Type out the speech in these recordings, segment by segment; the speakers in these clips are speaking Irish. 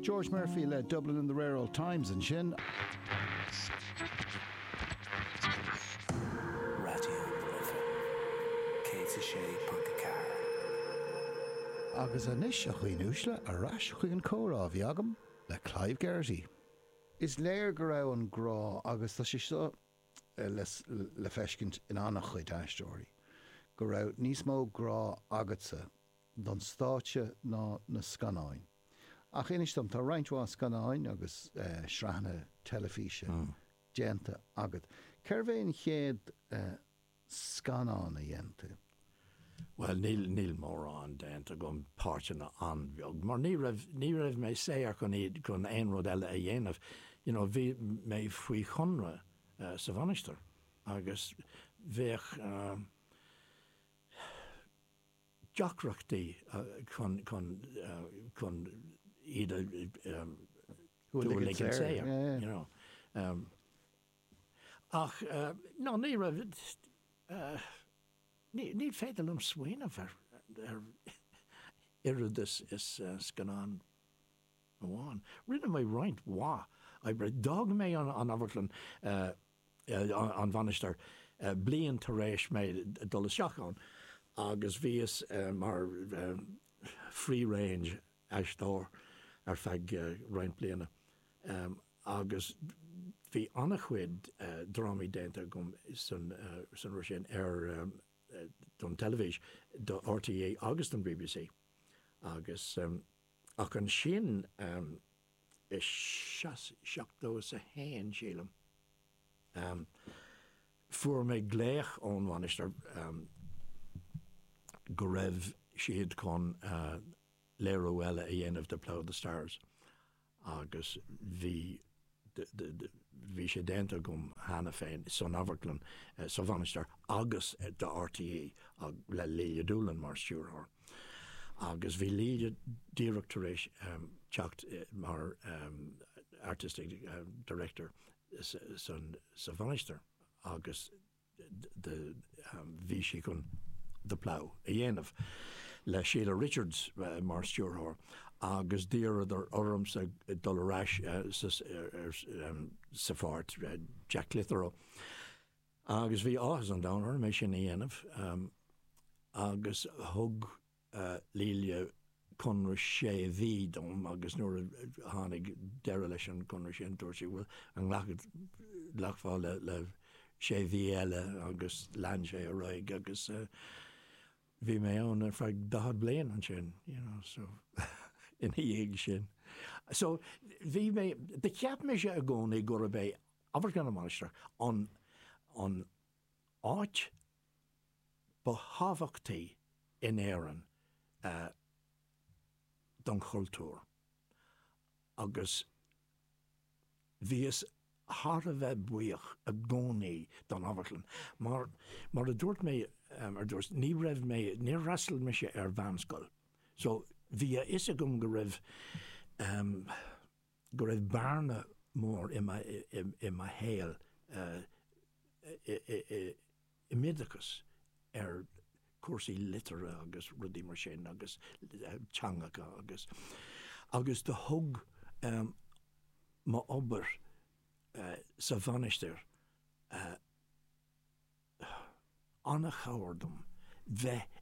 George Murphy le Dublin in the Rare Old Times ansin. Radio na Life 106.4. Agus anois, a dhaoine uaisle, ar ais chuig an gcomhrá a bhí agam le Clive Geraghty. Is léir go raibh an grá, agus tá sé seo le feiscint in an-chuid aisteoirí, go raibh níos mó grá agatsa don stáitse ná na scannáin. Ach inis dom, tá roinnt mhaith scannáin agus sraitheanna teilifíse déanta agat. Cérbh é an chéad scannán a dhein tú? Bhuel, níl mórán déanta agam, páirteanna an-bheag, mar ní raibh, ní raibh mé saor chun iad, chun aon rud eile a dhéanamh. You know, bhí mé faoi chonradh sa Mhainistir agus bheadh, deacrachtaí chun iad a shúil ag an saol, you know. Ach no, ní raibh, ní féidir liom smaoineamh ar oiread is scannán amháin. Rinne mé roinnt mhaith oibre. D'fhág mé an amharclann an Mhainistir bliain tar éis mé dul isteach ann agus bhíos mar freelance aisteoir ar feadh roinnt bliana agus bhí an-chuid drámaí déanta agam san ré sin ar don teilifís do RTÉ agus don BBC agus Ach ansin, i seachtó is a haon, sílim, fuair mé glaoch ón Mhainistir go raibh siad chun léiriú eile a dhéanamh de The Plough and the Stars agus bhí Bhí sé déanta agam cheana féin san amharclann sa Mhainistir agus do RTÉ le Lelia Doolan mar stiúrthóir. Agus bhí Lelia díreach tar éis teacht mar artistic director san, sa Mhainistir agus de bhí sí chun The Plough a dhéanamh, le Shelah Richards mar stiúrthóir, agus d'iarradar ormsa dul ar ais sa pháirt Jack Clitheroe, agus bhí áthas an domhain orm é sin a dhéanamh, agus thug. Tugadh conradh sé mhí dom agus nuair a tháinig deireadh leis an gconradh sin dúirt sí, bhuel, an nglacfá le sé mhí eile agus lean sé ar aghaidh agus bhí mé ann ar feadh 40 bliain ansin, you know, so ina dhiaidh sin. So bhí mé, cheap mise i gcónaí gurb é Amharclann na Mainistreach an áit, ba thábhachtaí in Éirinn don chultúr agus bhíos thar a bheith buíoch i gcónaí don amharclann. Mar a dúirt mé ar dtús, ní raibh mé, níor fhreastail mise ar mheánscoil so bhí a fhios agam go raibh, go raibh bearna mór i mo shaol i m'oideachas ar chúrsaí liteartha agus rudaí mar sin agus teangacha agus, agus do thug m'obair sa Mhainistir an-chabhair dom bheith,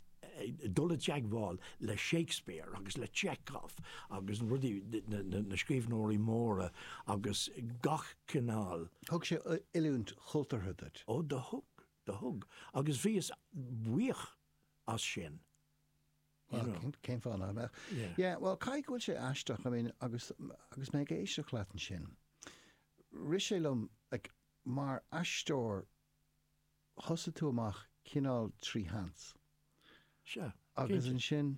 dul i dteagmháil le Shakespeare agus le Chekhov agus rudaí, na scríbhneoirí móra agus gach cineál. Thug sé oiliúint chultúrtha duit. Ó, do thug, do thug, agus bhíos buíoch as sin, you know. Bhuel, cén fáth nach mbeadh? Yeah. Yeah, bhuel, caithfidh go bhfuil sé aisteach, I mean, agus, agus mé ag éisteacht leat ansin, rith sé liom, like, mar aisteoir, thosaigh tú amach cineál trí sheans. Sea, cinnte. Agus ansin,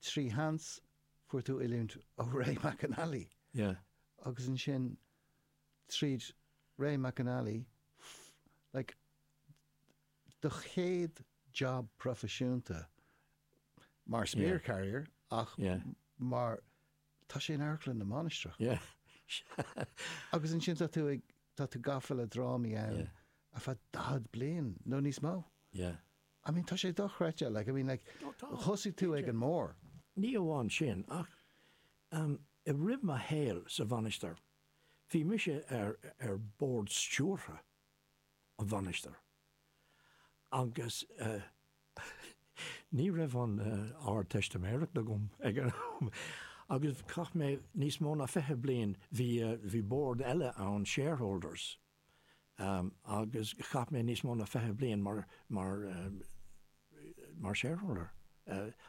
trí sheans, fuair tú oiliúint ó Ray McAnally. Yeah. Agus ansin, tríd Ray McAnally like do chéad job proifisiúnta mar spear carrier ach mar tá sé in Amharclann na Mainistreach agus ansin tá tú ag tá tú gafa le drámaí ann ar feadh 40 bliain nó níos mó. I mean tá sé dochreidte like I mean like thosaigh tú ag an mbarr. Ní amháin sin ach i rith mo shaoil sa Mhainistir, Bhí mise ar ar bhord stiúrtha na Mainistreach agus ní raibh an Ardteistiméireacht agam ag an am agus chaith mé níos mó ná fiche bliain, bhí, bhí bord eile ann, shareholders, agus chaith mé níos mó ná fiche bliain mar, mar, mar shareholder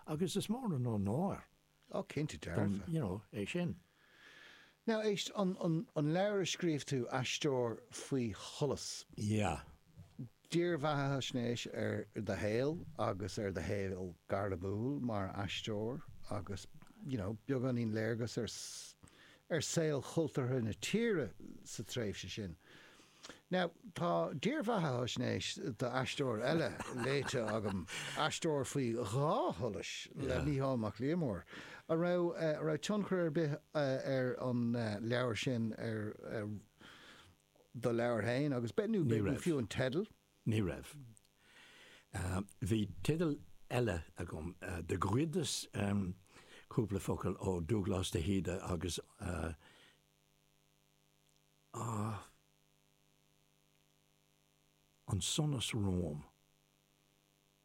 agus is mór an onóir. Oh, cinnte dearfa. you know, é sin. Now, éist, an, an, an leabhar a scríobh tú, Aisteoir Faoi Sholas. Yeah. Dírbheathaisnéis ar do shaol agus ar do shaol gairmiúil mar aisteoir agus, you know, beagáinín léargas ar, ar saol cultúrtha na tíre sa tréimhse sin. Now, tá dírbheathaisnéis d'aisteoir eile léite agam, Aisteoir faoi Dhá Sholas le Mícheál Mac Liammóir. An raibh tionchar ar bith ar an leabhar sin ar do leabhar féin agus, nó fiú an teideal? Ní raibh. Bhí teideal eile agam, do ghoideas cúpla focal ó Dubhghlas de hÍde agus. Ach An Sonas Romham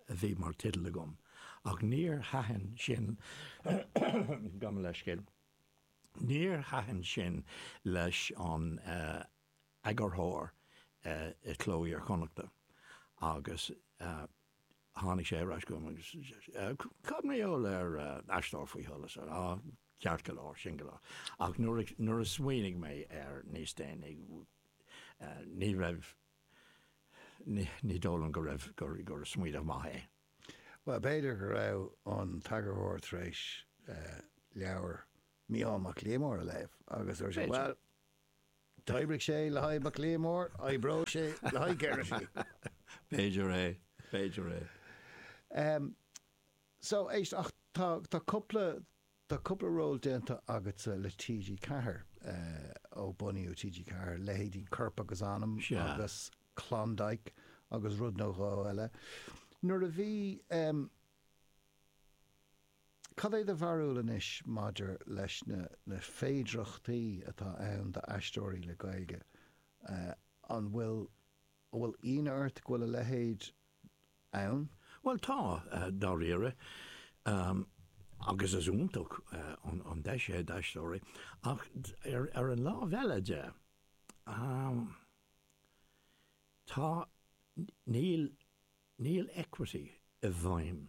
a bhí mar teideal agam, ach níor thaitin sin, gabh mo leithscéal, níor thaitin sin leis an eagarthóir i Cló Iar-Chonnachta agus Tháinig sé ar ais chugam agus cad mar gheall ar Aisteoir Faoi Sholas? Á, ceart go leor, sin go leor, ach nuair a smaoinigh mé air níos déanaí, ní raibh, ní dóigh liom go raibh, gur smaoineamh maith é. Bhuel, b'fhéidir go raibh an t-eagarthóir tar éis leabhar Mícheál Mac Liammóir a léamh agus dúirt sé, bhuel, D'oibrigh sé le haghaidh Mac Liammóir, oibreoidh sé le haghaidh Geraghty. B'fhéidir é, b'fhéidir é. Em, so, éist, ach tá, tá cúpla, tá cúpla ról déanta agatsa le TG4, eh, ó bunaíodh TG4, leithéidí Corp agus Anam agus Klondike agus rud nó dhó eile. Nuair a bhí, em, Cad é do bharúil anois maidir leis na na féidearthachtaí atá ann d'aisteoirí le Gaeilge? An bhfuil an bhfuil ionadh ort go bhfuil a leithéid ann? Bhuel tá, dáiríre, agus is iontach an deis é d'aisteoirí, ach ar an lámh eile de, tá, níl, níl Equity i bhfeidhm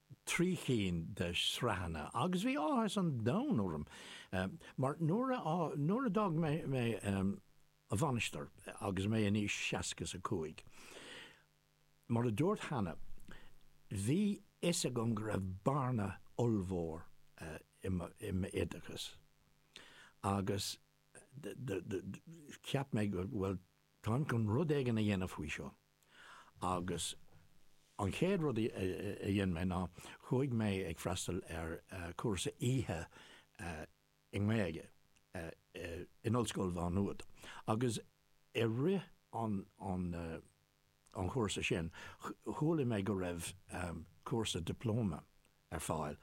trí cinn de shraitheanna agus bhí áthas an domhain orm mar nuair a nuair a d'fhág mé mé an Mhainistir agus mé in aois seasca is a cúig mar a dúirt cheana bhí fhios agam go raibh bearna ollmhór i mo i m'oideachas agus do do do cheap mé bhuel táim chun rud éigin a dhéanamh faoi seo. Agus an chéad rud a dhein mé ná chuaigh mé ag freastal ar chúrsa oíche i nGaeilge in Ollscoil Mhá Nuad. Agus i rith an chúrsa sin chuala mé go raibh cúrsa dioplóma ar fáil,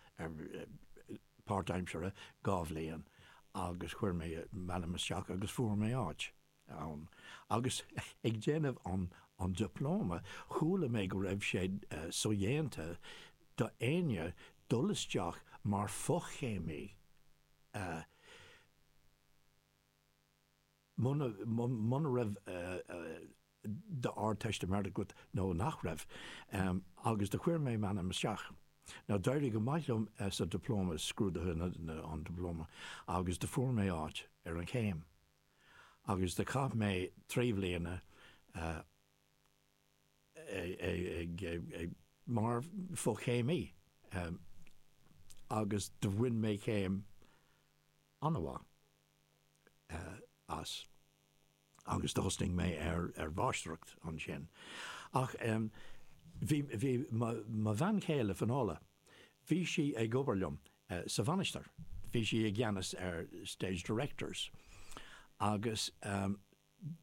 páirtaimseartha, dhá bhliain, agus chuir mé m'ainm isteach agus fuair mé áit. ann agus ag déanamh an dioplóma. Chuala mé go raibh sé sodhéanta do éinne dul isteach mar fhochéimí má bhí d'Ardteistiméireacht agat nó nach raibh. Agus do chuir mé m'ainm isteach. Now d'éirigh go maith liom sa dioplóma, scrúdaithe an dioplóma, agus do fuair mé áit ar an chéim. agus do chaith mé trí bhliana mar fhochéimí agus do bhain mé céim an-mhaith as agus thosnaigh mé ar mháistreacht ansin. Ach bhí mo bhean chéile, Finola, bhí sí ag obair liom sa Mhainistir. Bhí sí i gceannas ar Stage Directors agus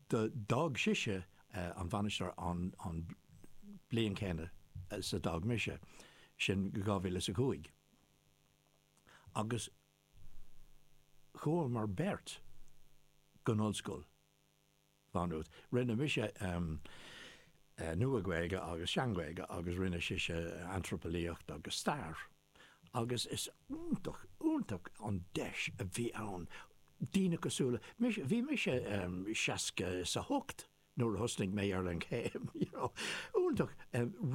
d'fhág sise an Mhainistir an bhliain chéanna is a d'fhág mise, sin 2005. Agus chuamar beirt go hOllscoil. Mhá Nuad. Rinne mise Nua-Ghaeilge agus Sean-Ghaeilge agus rinne sise Antraipeolaíocht agus Stair agus is iontach, iontach an deis a bhí ann daoine cosúil liomsa, bhí mise seasca is a hocht nuair a thosnaigh mé ar an chéim, you know, iontach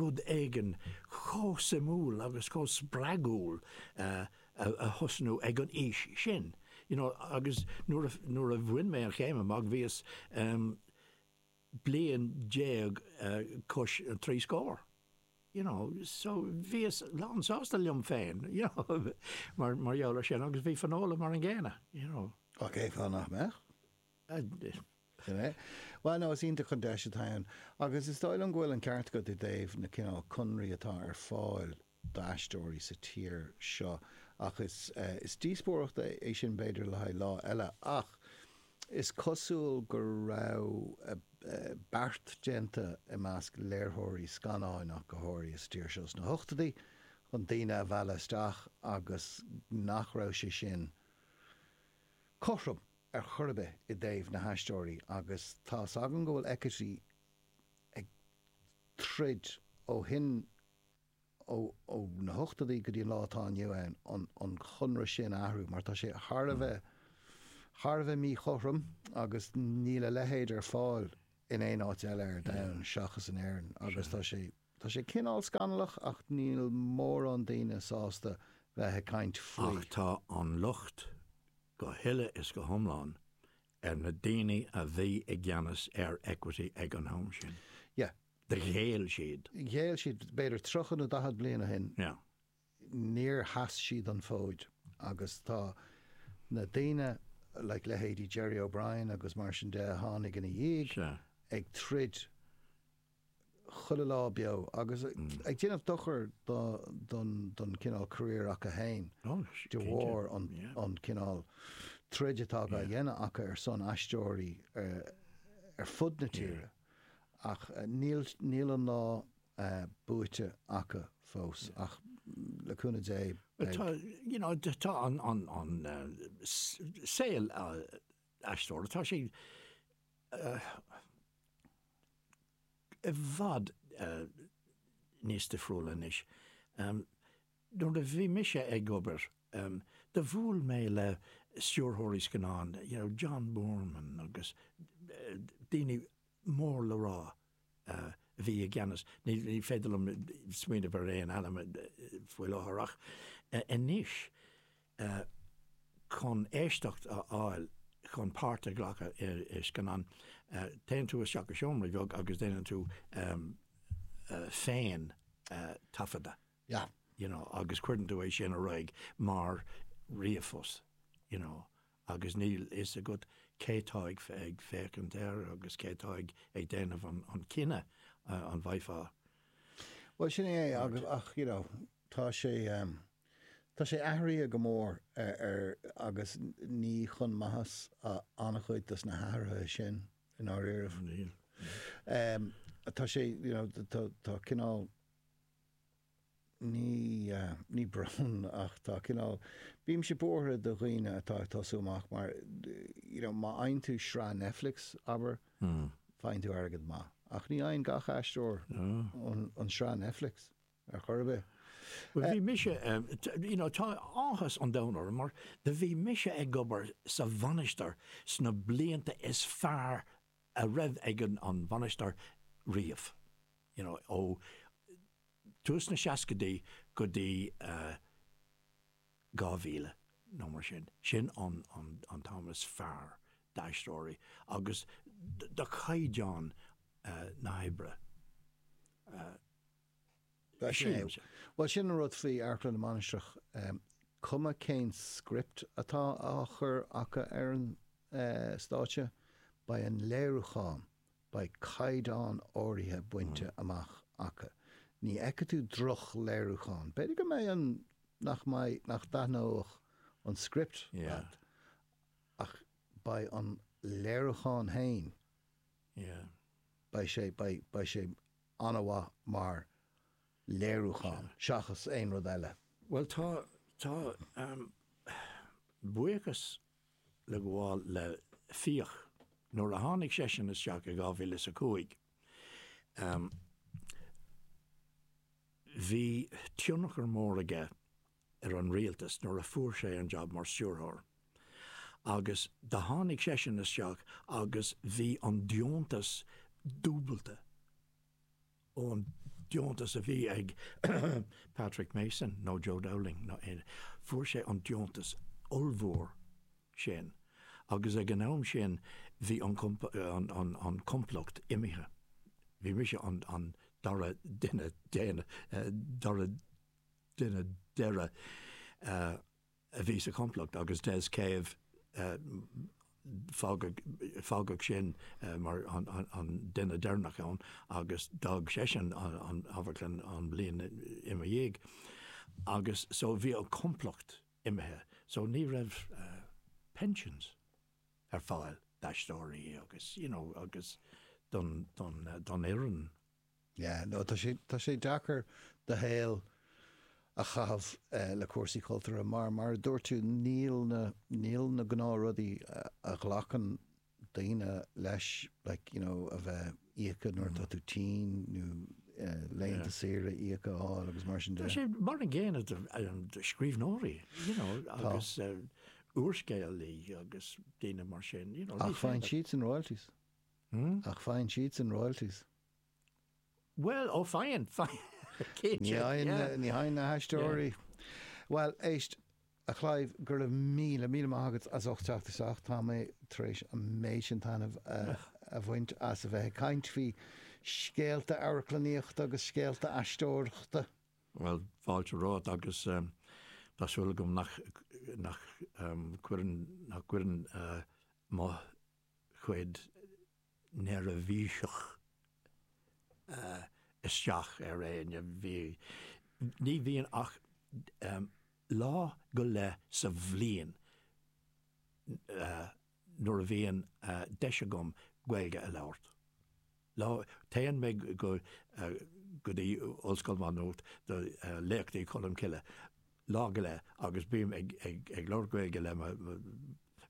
rud éigin chomh suimiúil agus chomh spreagúil a. a thosnú ag an aois sin, you know, agus nuair a, nuair a bhain mé an chéim amach bhíos bliain déag cois an trí scór, you know, so bhíos lánsásta liom féin, you know, mar, mar gheall ar sin agus bhí Finola mar an gcéanna, you know. Á, cé fáth nach mbeadh? Sin é. Bhuel, nó is iontach an deis atá ann. Agus is dóigh liom go bhfuil an ceart agat i dtaobh na cineál conraí atá ar fáil d'aisteoirí sa tír seo. Ach is díospóireacht é sin b'fhéidir le haghaidh lá eile. Ach is cosúil go raibh beart déanta i measc léirtheoirí scannáin ach go háirithe sa tír seo sna hochtóidí chun daoine a mhealladh isteach agus nach raibh sé sin cothrom ar chor ar bith i dtaobh na haisteoirí agus tá's agam go bhfuil Equity ag troid ó shin i ó na hochtóidí go dtí an lá atá inniu ann, an conradh sin a athrú mar tá sé thar a bheith, thar a bheith míchothrom agus níl a leithéid ar fáil in aon áit eile ar domhan seachas in Éirinn agus tá sé, tá sé cineál scannalach ach níl mórán daoine sásta bheith ag caint faoi. Ach tá an locht go huile is go hiomlán ar na daoine a bhí i gceannas ar Equity ag an am sin. Yeah. Ghéill siad. Ghéill siad, b'fhéidir tríocha nó daichead bliain ó shin. Níor sheas siad an fód agus tá na daoine, like leithéidí Gerry O'Brien agus mar sin de a tháinig ina dhiaidh, ag troid chuile lá beo agus ag déanamh dochair don chineál career acu fhéin de bharr an cineál troid atá á dhéanamh acu ar son aisteoirí ar fud na tíre. Ach níl an lá buaite acu fós, ach le cúnamh Dé, beidh. You know, tá an saol aisteora, tá sé i bhfad níos difriúla anois. nuair a bhí mise ag obair, do bhuail mé le stiúrthóirí scannán, you know, John Boorman agus daoine mór le rá a bhí i gceannas, ní féidir liom smaoineamh ar aon ainm faoi láthair ach anois chun éisteacht a fháil, chun páirt a ghlacadh i scannán, téann tú isteach i seomra bheag agus déanann tú féin taifeadadh. yeah, you know, agus cuireann tú é sin ar aghaidh mar ríomhphost, you know, agus níl a fhios agat cé tá ag féachaint air agus cé tá ag déanamh an cinneadh an bhfaighfeá. Bhuel, sin é é, agus, ach, you know, tá sé, ehm, tá sé athraithe go mór ar, agus ní chun maitheas an-chuid dos na hathruithe sin, i ndáiríribh. Níl. Ehm, tá sé, you know, tá cineál, ní, ní brón, ach tá cineál, bímse buartha do dhaoine atá ag tosú amach mar, you know, má fhaigheann tú sraith Netflix, abair, faigheann tú airgead maith. Ach ní fhaigheann gach aisteoir an sraith Netflix ar chor ar bith. Bhuel, bhí mise, you know, tá áthas an domhain orm mar do bhí mise ag obair sa Mhainistir sna blianta is fearr a raibh ag an Mhainistir riamh. You know, ó tús na seascaidí go dtí 2000 nó mar sin, sin an t-am is fearr d'aisteoirí agus do chaighdeán na hoibre. Bhuel, sin an rud faoi Amharclann na Mainistreach, cuma cén script atá á chur acu ar an stáitse, beidh an léiriúchán, beidh caighdeán áirithe bainte amach acu. Ní fheicfidh tú droch-léiriúchán. B'fhéidir go mbeadh an, nach mbeidh, nach dtaitneoidh an script leat, ach beidh an léiriúchán fhéin, beidh sé, beidh, beidh sé an-mhaith mar léiriúchán seachas aon rud eile. Bhuel, tá, tá, ahem, buíochas le gabháil le Fiach, nuair a tháinig seisean isteach i dhá mhíle is a cúig, ahem, bhí tionchar mór aige, ar an rialtas nuair a fuair sé an jab mar stiúrthóir agus do tháinig seisean isteach agus bhí an deontas dúbailte ón deontas a bhí ag Patrick Mason nó Joe Dowling nó aon, fuair sé an deontas ollmhór sin agus ag an am sin bhí an, an complacht imithe, bhí mise an dara duine deireanach, dara. duine deireadh a bhí sa chomplacht agus Des Cave fágadh eisean mar an duine deireanach ann agus d'fhág seisean an amharclann an bhliain ina dhiaidh agus so bhí an complacht imithe so ní raibh pensions ar fáil d'aisteoirí agus you know agus don fhoireann. Yeah, no, tá sé, tá sé deacair do shaol a chaitheamh le cúrsaí cultúrtha mar, mar a dúirt tú, níl na, níl na gnáthrudaí a ghlacann daoine leis, like, you know, a bheith íoctha nuair atá tú tinn nó laethanta saoire íoctha a fháil agus mar sin de. Tá sé mar an gcéanna do scríbhneoirí, you know, agus úrscéalaithe agus daoine mar sin, you know. Ach faigheann siadsan royalties. Hmm? Ach faigheann siadsan royalties. Bhuel, ó faigheann, faigheann. Ní fhaigheann, ní fhaigheann na haisteoirí. Bhuel, éist, a Chlive, go raibh míle, míle maith agat as ucht teacht isteach. Tá mé tar éis an méid sin taitneamh a bhaint as a bheith ag caint faoi scéalta amharclannaíochta agus scéalta aisteoireachta. Bhuel, fáilte romhat agus tá súil agam nach cuireann, nach gcuireann mo. chuid neirbhíseach isteach ar éinne. Bhí, ní bhíonn ach lá go leith sa bhliain nuair a bhíonn deis agam Gaeilge a labhairt. Lá, téann mé go go dtí Ollscoil Mhá Nuad do Léachtaí Cholm Cille lá go leith agus bím ag ag labhairt Gaeilge le mo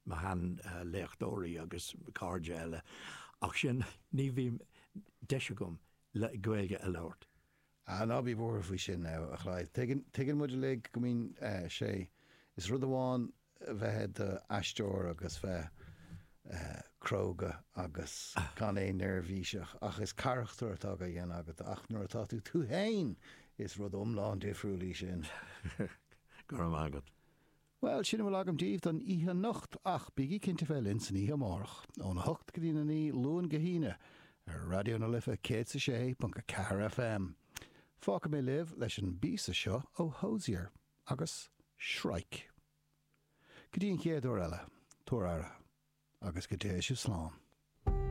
mo sheanléachtóirí agus cairde eile ach sin ní bhím deis agam le Gaeilge a labhairt. Ah, ná bí buartha faoi sin, a Chlive. Tuigeann muid uilig go mbíonn sé, is rud amháin a bheith i do aisteoir agus bheith cróga agus gan a bheith neirbhíseach ach is carachtar atá á dhéanamh agat ach nuair atá tú tú féin, is rud iomlán difriúil í sin. Go raibh maith agat. Bhuel, sin a bhfuil agam daoibh don oíche anocht, ach bígí cinnte bheith linn san oíche amárach, óna hocht go dtí'n a naoi, Luan go hAoine, ar Raidió na Life 106.4 FM. Fágfaidh mé libh leis an bpíosa seo ó Hozier agus Shrike. Go dtí an chéad uair eile, tabhair aire, agus go dté sibh slán.